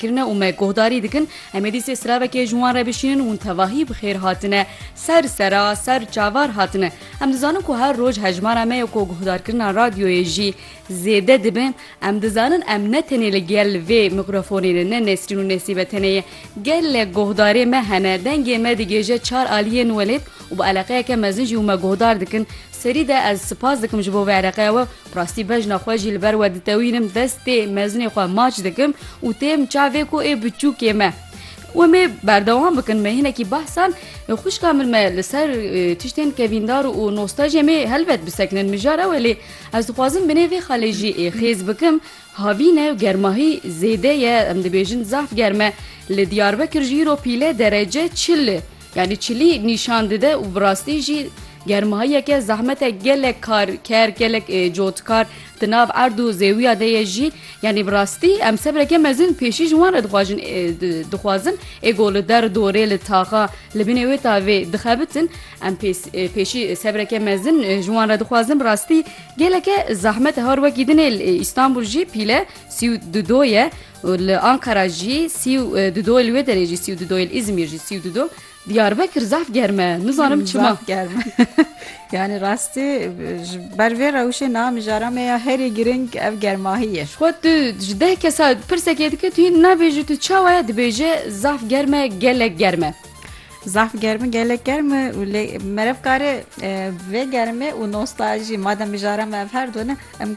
kirine û me guhdarî dikin em êdî sê silavekê ji wan re bişînin û hûn tevahî bi xêr hatine ser sera ser çavar hatine em dizanin ku her roj hejmara me ya ku guhdarkirina radyoyê jî zêde dibe em dizanin em ne tenê li gel vê mîkrafonê ne ne Nesrîn û Nesîbe tenê ye gelek guhdarê me hene dengê me digêje çar aliyên welêt û bi eleqeyeke mezin jî û me guhdar dikin serî de ez sipas dikim ji bo vê eleqeya we Bi rastî bejna xwe jî li ber we ditewînim, destê mezinê xwe maç dikim û têm çavê ku ê biçûkê me. We mê berdewam bikin me hinekî behsan xwişka min me li ser tiştên kevîndar û nostajê mê helbet bisekinin mijar ew e lê ez dixwazim binê vê xalê jî ê xêz bikim havîn e germahî zêde ye em dibêjin zaf germ e li Diyarbekir jî îro pîle derece çil Yanî çilî nîşan dide û bi rastî jî germahiyeke zehmete gelek karker gelek cotkar di nav erd û zêwiya de ye jî yanî bi rastî em sebreke mezin pêşî ji wan re dixwajin dixwazin ê ku li der dorê li taxa li binê wê tavê dixebitin em pêşî sebreke mezin ji wan re dixwazin bi rastî geleke zehmete har wekî dinê îstanbul jî pîle sî û di do ye û li Ankara jî sî û du doyê li wê derê jî sî û du doyê li Îzmîr jî sî û du do Diyarbekir zaf germ e nizanim çima Zaf germ e. yani rastî ji ber vê rewşê niha mijara me ya herî girîng ev germahî ye. Xwe tu ji deh kesa pirsekê dike tu yê nabêjî tu çawa ye dibêje zaf germ e gelek germ e. Zaf germ e gelek germ e û lê merevkarê vê germê û nostalji madem mijara me ev her du ne em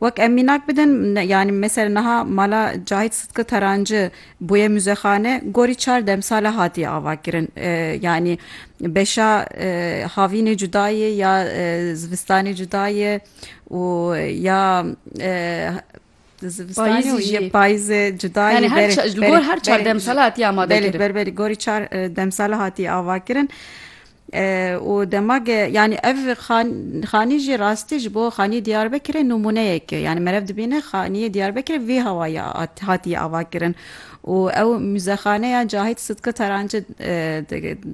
Wek em mînak bidin yanî mesela niha mala Cahît Sidki Taranci bûye muzexane gorî çar demsale hatiye avakirin. Yanî beşa havînê cuda ye ya zivistanê cuda ye û ya zivistanê payîzê cuda ye gor her çar demsale hatiye amadekirin. Belê belê gorî çar demsale hatiye avakirin. Û dema ge yanî ev xanî jî rastî ji bo xanîyê Diyarbekirê nûmûneyek e. Yanî meriv dibîne xanîyê Diyarbekirê vî hawayî hatîye avakirin û ew muzexaneya Cahît Sidki Taranci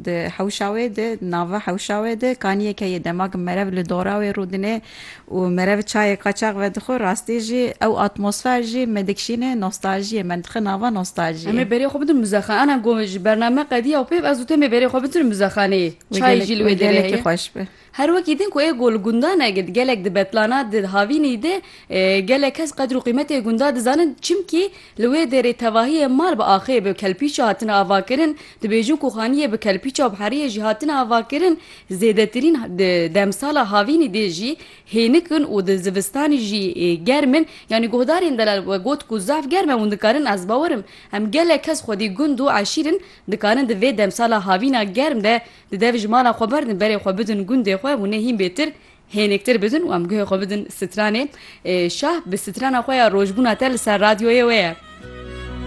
di hewşa wê de di nava hewşa wê de kanîyeke ye. Dema ge meriv li dora wê rû dine û me re bi çayê qaçax vedixwe rastî jî ew atmosfer jî me dikişîne nostaljiyê me dixe nava nostaljiyê. Em ê berê xwe bidin muzexan ana gomê ji bername qediya û pêv ez û te mê berê xwe bitin muzexaneyê çayê jî li wê derê heye her wekî din ku ê ku li gundan e gelek di betlana di havînî de gelek kes qedr û qîmetê gunda dizanin çimkî Li wê derê tevahiyê mal bi axê bi kelpîça hatine avakirin, dibêjin ku xaniyê bi kelpîça û bi heriyê jî hatine avakirin, zêdetirîn di demsala havînî dê jî hênik in û di zivistanî jî germ in. Yanî guhdarên delal we got ku zaf germ e hûn dikarin ez bawer im. Em gelek kes xwedî gund û eşîr in, dikarin di vê demsala havîna germ de di dev ji mala xwe berdin berê xwe bidin gundê xwe hûnê hîn bêtir Hênektir bidin û em guhê xwe bidin stranê. Şah bi strana xwe ya rojbûna te li ser radyoyê wê ye.